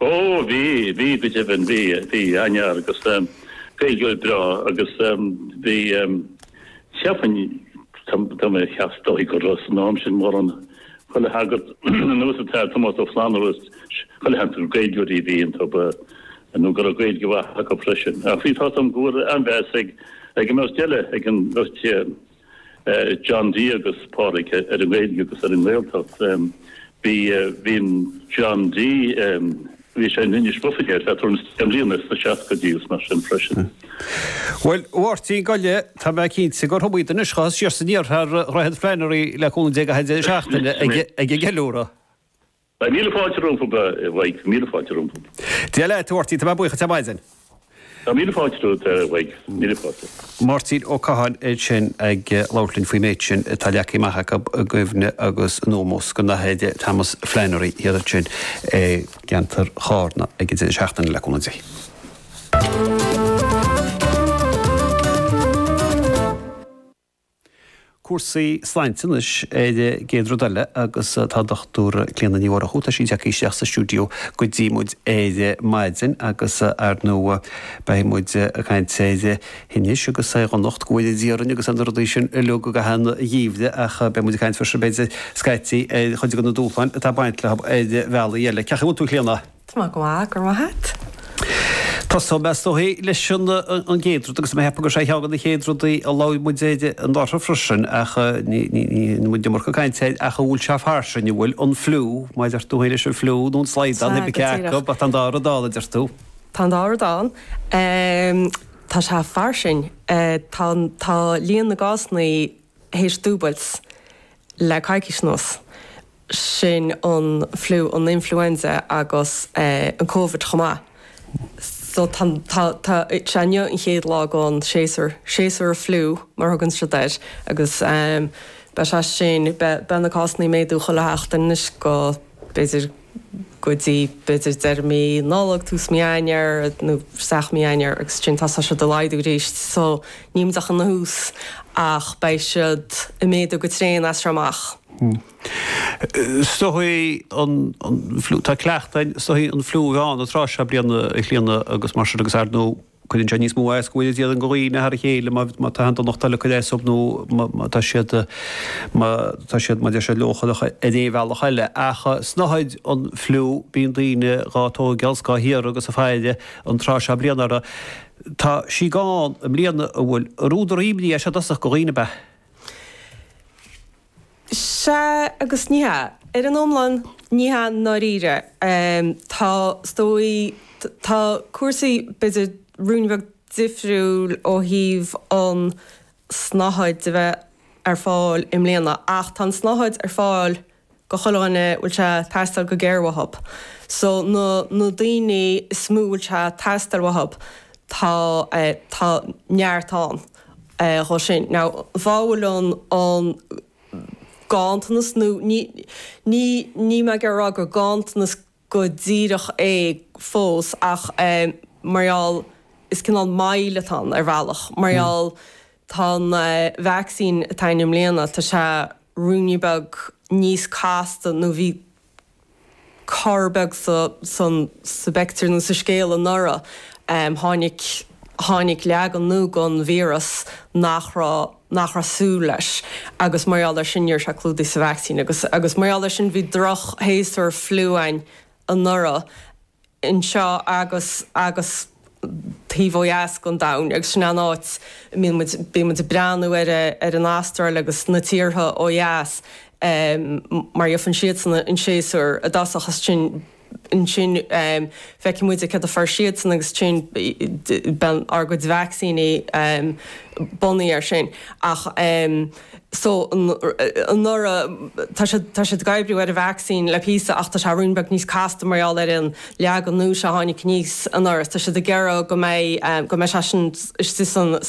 Ó, bhí, bhí, go deimhin, bhí, bhí, an-fhear agus Gaeilgeoir breá agus bhí, cheapfainn, tá, tá mé ag ceapadh, is dóigh go raibh san am sin mórán, chuile shagart, ar nós an tAthair Tomás Ó Flannabhra is chuile shagart gur Gaeilgeoirí a bhí iontu, ba, nó go raibh Gaeilge mhaith acu freisin. Ach bhí, tá, tá go raibh an-mheas ag, ag an mbeirt eile, ag an mbeirt, John D agus Pádraig ar an nGaeilge agus ar an nGaeltacht. Bhí John D, bhí sé in Inis Bó Finne le tuairim is deich mbliana, sna seascaidí is mar sin freisin. Bhuel, a Mháirtín, gabh i leith, tá mé cinnte gur thug muid anois chucu siar siar thar Dhroichead Flannery le cúnamh Dé i gcaitheamh deireadh seachtaine ag an gceiliúradh. Beidh míle fáilte rompu, beidh míle fáilte rompu. Dia leat, a Mháirtín, tá mé buíoch díot ar maidin. Tá míle fáilte romhat, a bheidh míle fáilte. Máirtín Ó Catháin é sin ag labhairt linn faoin méid sin atá leagtha amach acu i gcuimhne agus in ómós don Athair Thomas Flannery, thiar ansin i gceantar Chárna ag an deireadh seachtaine le cúnamh Dé. cúrsaí slainte anois ar an gcéad rud eile agus tá Dr Clíona Ní Mhurchú, tá sí ag teacht isteach sa stiúideo go dtí muid ar maidin agus ar ndóigh beidh muid ag caint ar thinneas agus ar dhonacht, go bhfóire Dia orainn agus ar na rudaí sin uilig i gcaitheamh an gheimhridh ach beidh muid ag caint freisin b'fhéidir scaití ar chuid de na dúshláin atá ag baint leo ar bhealaí eile. Cén chaoi a bhfuil tú a Chlíona! Tá mé go maith, go raibh maith a't. Tosóidh mé, is dóichí, leis an gcéad rud, agus mé ag ceapadh gur sé ceann de na chéad rudaí a labhair muid air anuraidh freisin, ach ní bhfuair muid an iomarca cainte air, ach an bhfuil sé fairsing, an bhfuil? An fliú, mar a deir tú é leis an fliú, nó an slaghdán, cébí cé acu, tá an dá rud ann, a deir tú. Tá an dá rud ann. Tá sé fairsing. Tá líon na gcásanna théis dúbailt le coicís anuas. sin an fliú, an influenza agus an Covid chomh maith. So tá, tá, tá, sea inniu an chéad lá den séasúr, séasúr an fliú mar a thugann siad air agus beidh sé sin, beidh, beidh na cásanna ag méadú chuile sheachtain anois go, b'fhéidir go dtí, b'fhéidir deireadh mí Nollag, tús mí Eanáir nó isteach i mí Eanáir agus ansin tosóidh siad ag laghdú arís. So níl muid ach ina thús ach beidh siad ag méadú go tréan as seo amach. Is dóichí an fliú, tá cleachtadh, is dóichí an fliú a bheith ann an tráth seo bliana a Chlíona agus mar sin agus ar ndóigh cuireann sé níos mó as go bhfóire Dia orainn go dhaoine thar a chéile má má tá aon donacht eile ag cur as dóibh nó má má tá siad má tá siad mar a deir siad leochaileach ar aon bhealach eile. Ach snáthaid an fliú bíonn daoine dhá tógáil is dhá hiarraidh agus á fáil an tráth seo bliana ach tá sí gann i mbliana an bhfuil údar imní i dtosach go dhaoine ab ea Sea agus ní hea. Ar an iomlán, ní hea i ndáiríre. Tá, is dóigh, tá cúrsaí b'fhéidir ruainne beag difriúil ó thaobh an tsnáthaid de bheith ar fáil i mbliana ach tá an tsnáthaid ar fáil i do chuile dhuine a bhfuil sé ag teastáil go géar uathub. So na na daoine is mó a bhfuil sé ag teastáil uathub tá tá neart ann dhóib sin. Now an fáth a bhfuil an an ganntanas nó ní ní níl mé ag iarraidh a rá gur ganntanas, go díreach é fós ach mar gheall, is cineál moill atá ann ar bhealach, mar gheall tá an vacsaín atá ann i mbliana, tá sé ruainne beag níos casta nó bhí cor beag san sa bpictiúr nó sa scéal anuraidh, tháinig, tháinig leagan nua den víreas nach raibh. nach raibh súil leis agus mar gheall ar sin ní raibh sé clúdaithe sa vacsaín agus agus mar gheall ar sin bhí drochshéasúr fliú ann anuraidh anseo agus agus taobh ó dheas den domhain agus sin an áit a mbíonn muid bíonn muid ag breathnú ar ar an Astráil agus na tíortha ó dheas mar gheobhann siadsan an séasúr i dtosach agus ansin ansin feicfidh muid céard a fuair siadsan agus ansin beidh ár gcuid vacsaíní bunaithe ar sin ach so anuraidh tá siad tá siad ag oibriú ar an vacsaín le píosa ach tá sé ruainne beag níos casta mar gheall ar an leagan nua seo a tháinig aníos anuraidh tá siad ag iarraidh go mbeidh go mbeidh sé sin istigh san